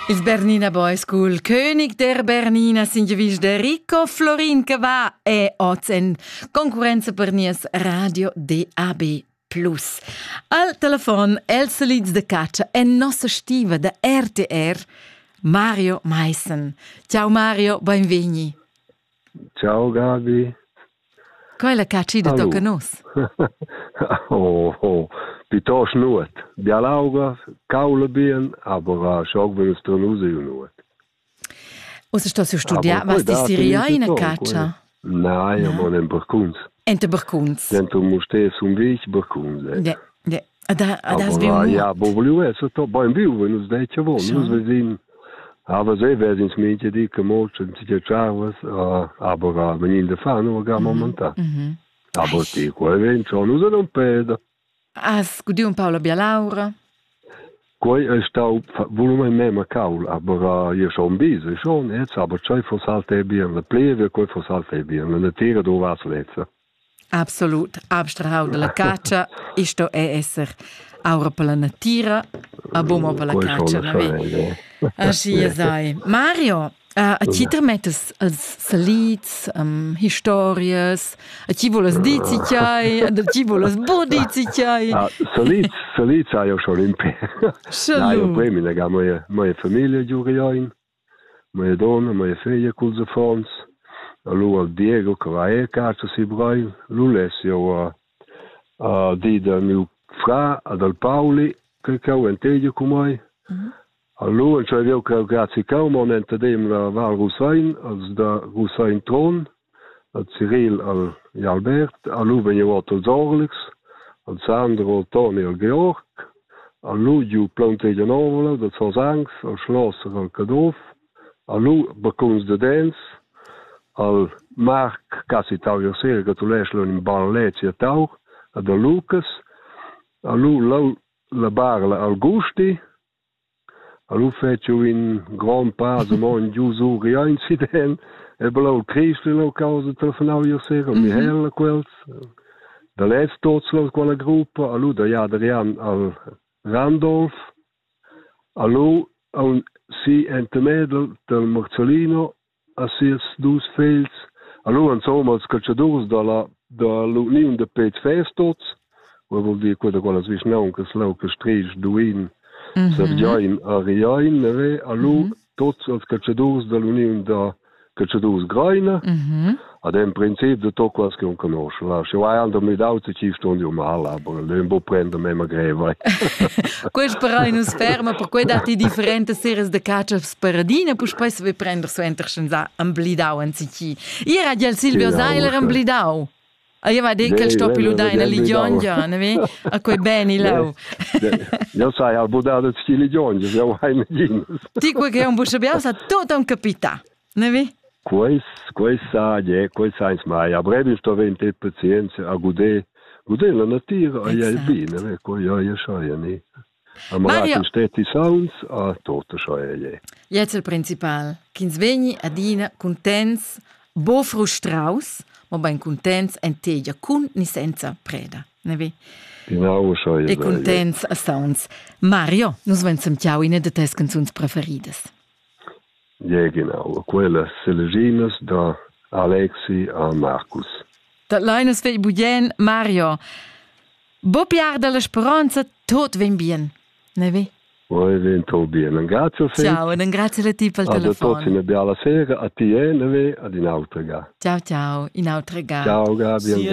Il Bernina Boy School, König der Bernina Singevisch de Rico, Florin Cavà è oz en concurenza per nies Radio DAB. Plus. Al telefon els lids de caccia e nossa stiva da RTR, Mario Meissen. Ciao Mario, benvegni. Ciao Gabi. Quella catschida tocca nus. oh, oh. Piuttost nuot. Bialauga, caula bien, aber schon will es dann raus nuot. Ussa stos du studiar, was ti siria ina caccia? Nein, io mon en barcuns. En te barcuns? Dentro mu stes un vich barcuns. Eh. Ja, ja. Ja bobliu esser to beim viu wenn uns deit wo nus wir sehen aber se wer ins meinte die gemolchen sie charwas aber wenn in der fano ga momenta aber ti quel ven schon us non peda as gudi un paola bia laura quei è stau volume me ma caul aber je schon bis schon jetzt aber zwei fossalte bien le pleve quei fossalte bien le tira do was letzte Absolut, abstrahau dalla catscha, iu sto er esser aura per la natira, a buma per la catscha naven. Aschia sai. Mario, a ti tremettas els salids, historias, a ti vulas dir ci tgei, a ti vulas buca dir ci tgei. Salids, salids hai jeu schon impè. Hai jeu poi mi legà moje, moje familie giu Rioin. Mia dunna, mia feglia culs affons, e lu al Diego che va era casa si Breil, lu less jeu a dir da miu frar e dal Pauli che cheu entegia cun mei. E lu entscheiv jeu cheu grazia cheu, mo enta dem la Val Rusein, als da Rusein Trun. Al Ciril al e Albert, a lu vegn jeu ord ils orlics, al Sandro, al Toni, al Georg, a lu giu plauntegia novla da Zos Angs, al Schlosser, al Caduff, a lu baccuns da dents, al Marc Cassi tau jeu sera gratulesch leu in in bal lezi a tau, ad a Lucas, a lu lau la barla al Gusti, Er lu fetschu in grond pass e mo in dus uri ein siden e blau Christ ina causa telefonau io sera e Michael e quels da lez tots los quella gruppa a lu da ja Adrian al Randolph a lu a un si ente Mädel del Morzolino a sias dus fegls, allura insomma als caltschadurs dalla dalla uniun da peds vess tots, quei vul dir quella quellas vischnauncas leu che Strisch, Duin, mhm. Serviain a Riain, neve, allo mhm. tots als caltschadurs dall'uniun da caltschadurs Greina, mhm. Ad en princip de to quas che un conosce, va. Sche vai ando mi dau te ci stond io mahal, aber le bo prende me ma greva. Quest però in sperma, per cui dati differente seres de caccias paradine, pus poi se vi prender su enter senza amblidau en sici. Io era del Silvio Seiler amblidau. Ah, io va detto che sto più ludai nel ligiongia, ne vi? A quei beni lau. Io sai al budare sti ligiongia, io vai ne Ti quei che un busciabia sa tot un capita. Nevi? Quais, quais saglie, quais sains mai. A brevi sto vein te pazienza a guder, guder la natura, a iel bine, ne, qua ia ia schaia ni. A malaten steti sauns, a tota schaia ie. Jetzt il principal, ch'ins vegni adina contents, bo frustraus, ma ben contents en tegia cun ni senza preda, nevi? Genau, schaia. E contents a sauns. Mario, nus venzem ciao ine de tes canzuns preferidas. Giaginau ha quellas selginas da Alexi a Marcus. Dat lein nus vegl bugien, Mario. Bo piar dalla speronza, tot vegn bien. Ne ve? Poi vem tot bien. Grazie Fei. Ciao, e ringrazio a ti per il telefono. A tutti una bella sera, a ti e ne ve, ad un'altra ga. Ciao, ciao, un'altra ga. Ciao Gabi, grazie.